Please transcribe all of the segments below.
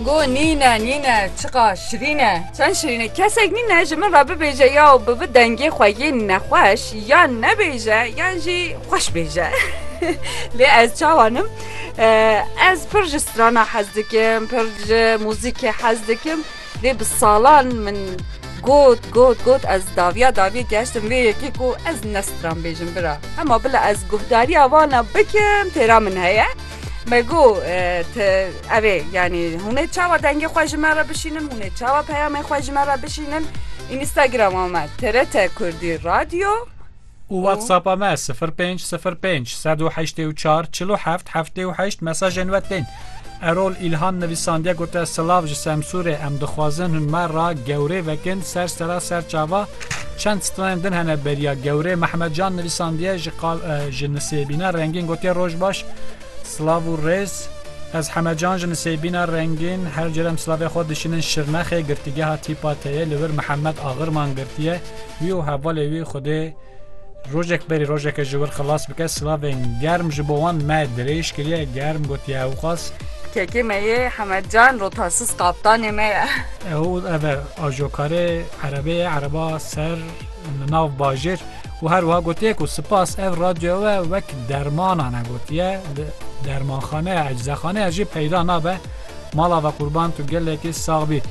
Go nîne nîne çiqa şirîn e. Çend şirîn e. Kesek nîne ji min re bibêje ya bi vi dengê xwe yê nexweş ya nebêje yan jî xweş bêje. Lê ez çawa nim? Ez pir ji strana hez dikim, pir ji muzîkê hez dikim. Lê bi salan min got got got ez daviya daviya geştim vê yekê ku ez ne stran bêjim bira. Hema bila ez guhdariya vana bikim têra min heye. Me got ev ê yanî hûnê çawa dengê xwe ji me re bişînin hûnê çawa peyamê xwe ji me re bişînin Instagrama me TRT Kurdî Radyo û WhatsAppa me 0505 184 47 78 mesajên we tên. Erol Îlhan nivîsandiye gote silav ji Semsûrê em dixwazin hûn me re gewrê vekin ser sera ser çava Çend stranên din hene beriya gewrê Mehmed Can nivîsandiye ji qal ji nisêbîna rengîn gotiye roj baş Slav û rêz Ez Hemed Can ji nisêbîna rengîn her cerem slavê xwe dişinin Şirnexê girtîgeha tîpa teyê li wir Mihemed Axirman girtiye wî û hevalê wî Xwedê rojek berî rojeke ji wir xilas bike slavên germ ji bo wan me dirêj kiriye germ gotiye ewqas Kekê me yê Hemed Can rotasîz kaptanê me ye. Ew ev e ajokarê Erebê ereba ser li nav bajêr û her wiha gotiye ku spas ev radyoya we wek dermanan e gotiye li dermanxaneya eczexaneya jî peyda nabe mala ve qurban tu gelekî sax bî.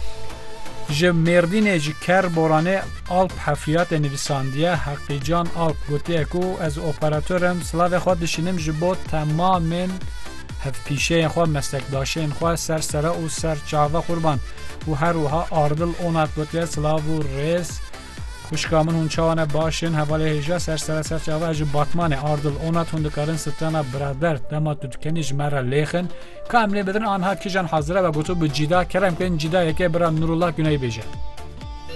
Ji Mêrdînê ji Ker Boranê Alp Hefriyatê nivîsandiye Heqîcan Alp gotiye ku ez operator im silavê xwe dişînim ji bo temamên hevpîşeyên xwe, meslekdaşên xwe, ser sere û ser çave qurban û her wiha Ardil Onat gotiye silav û rêz xwişka min hûn çawa ne baş in hevalê hêja ser sere ser çave ez ji Batmanê Ardil Onat hûn dikarin sitrana birader dema tu dikenî ji me re lêx in ka em lê bidin anha kijan hazire ve gotu bi cîda kerem kirin cîda yekê bira Nurullah Guney bêje.